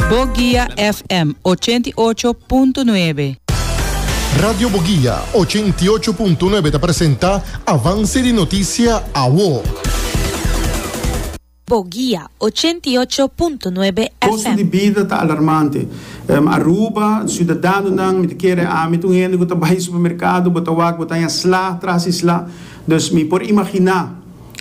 Boguia FM ochenta i ocho punto nuebe. Radio Boguia ochenta i ocho punto nuebe ta presenta Avance di Noticia Awo. Boguia ochenta i ocho punto nuebe Kostu FM. di bida ta alarmante. Aruba, Siudadanonan, mi ta kere ami ta un hende ku ta bai supermerkado, bo ta wak, bo ta haña sla tras di sla. Dus mi por imaginá.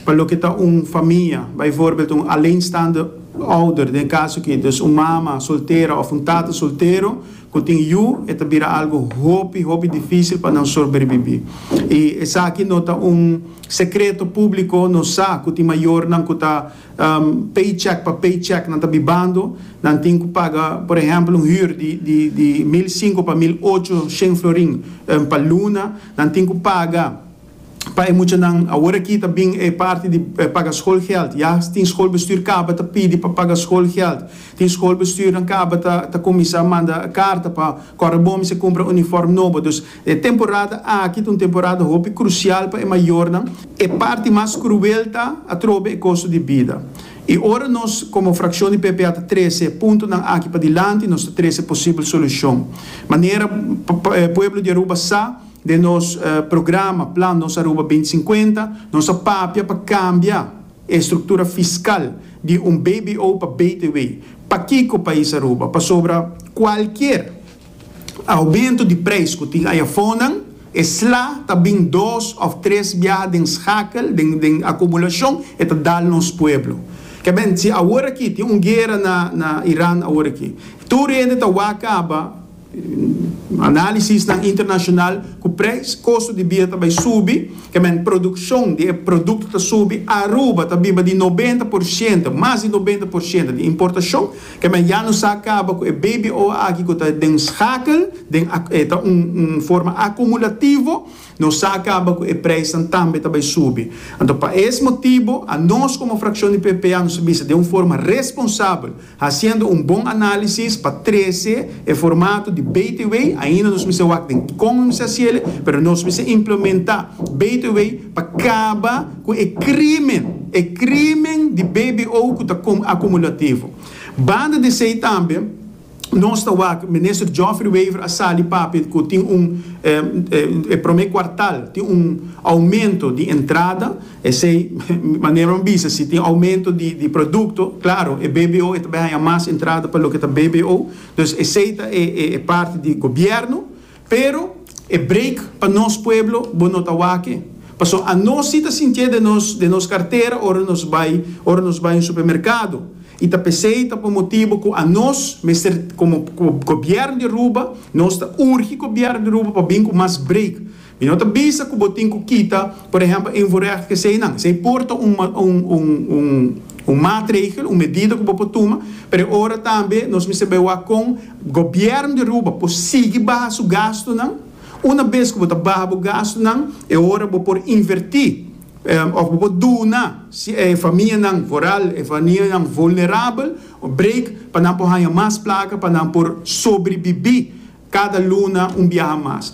pa loke ta un famia, bijvoorbeeld un alleenstaande ouder, den e kaso aki, dus un mama soltera òf un tata soltero ku tin yu, e ta bira algu hopi, hopi difísil pa nan sorberbibí. I esaki no ta un sekreto públiko, nos sa ku tin mayornan ku ta paycheck pa paycheck nan ta bibando, nan tin ku paga, por ehèmpel, un hür di di mil sinku pa mil ocho shen florin pa luna, nan tin ku paga pa e muchanan. Awor aki ta bin e parti di paga skolgèld. Ya tin skolbestuur kaba ta pidi pa paga skolgèld. Tin skolbestuurnan kaba ta ta kuminsá manda karta pa kòrda bon mi sa kumpra unifòrm nobo. Dus e temporada aki ta un temporada hopi krusial pa e mayornan. E parti mas kruel ta atrobe e kosto di bida. I ora nos komo frakshon di PPA ta trese e puntonan aki padilanti, nos ta trese posibel solushon. Manera pueblo di Aruba sa, Den nos programa Plan Nos Aruba binti sinkuenta, nos a papia pa kambia e struktura fiskal di un bbo pa btw. Pakiko pais Aruba? Pasobra kualkier oumentu di preis ku tin ayafonnan, e sla ta bin dos òf tres biaha den skakel, den akumulashon, e ta dal nos pueblo. Kèmen, si aworakí tin un guera na Iran aworaki, tur hende ta wak kaba. Analisisnan internashonal ku preis kosto di bida ta bai subi, kmn produkshon di e produkto ta subi, Aruba ta biba di nobenta por shento, mas di nobenta por shento, di importashon, kmn ya no sa kaba ku e BBO aki ku ta den skakel, den a e ta un un forma akumulativo, no sa kaba ku e preisnan tambe ta bai subi. Anto pa es motibo, anos komo frakshon di PPA nos a bisa den un forma responsabel, Haciendo un bon análisis pa trece e formato di Beterway, ainda nos mester wak den con nos mester haci el'e, pero nos mester implementa Beterway pa caba cu e crimen, e crimen di bbo cu ta acumulativo. Banda di esey tambe nos ta wak Minister Geoffrey Wever a sali papia cu tin un, e prome cuartal tin un aumento di entrada, Esei manera un bisa, si tin aumento di di produkto, klaro, e BBO e ta bai haña mas entrada pa loke ta BBO, dus esei ta e e e parti di gobièrnu, pero e break pa nos pueblo bo no ta wak-e, pasobra anos si ta sintié den nos den nos kartera ora nos bai ora nos bai un supermerkado, i ta p'esei ta por motibu ku anos mester komo gobièrnu di Aruba nos ta urgi gobièrnu di Aruba pa bin ku mas break Mi no ta bisa cu bo tin cu kita, por ehempel, e invoerrecht cu eseinan. Esei por ta un, un, un, un maatregel, un medida cu bo por tuma, pero e ora tambe nos mester bay wak con Gobierno di Aruba por sigui baha su gastunan. Una bes cu bo ta baha bo gastunan, e ora bo por inverti, of bo por duna si e famianan vooral e famianan vulnerabel un break pa nan por haya mas placa pa nan por sobribibi cada luna un biaha mas.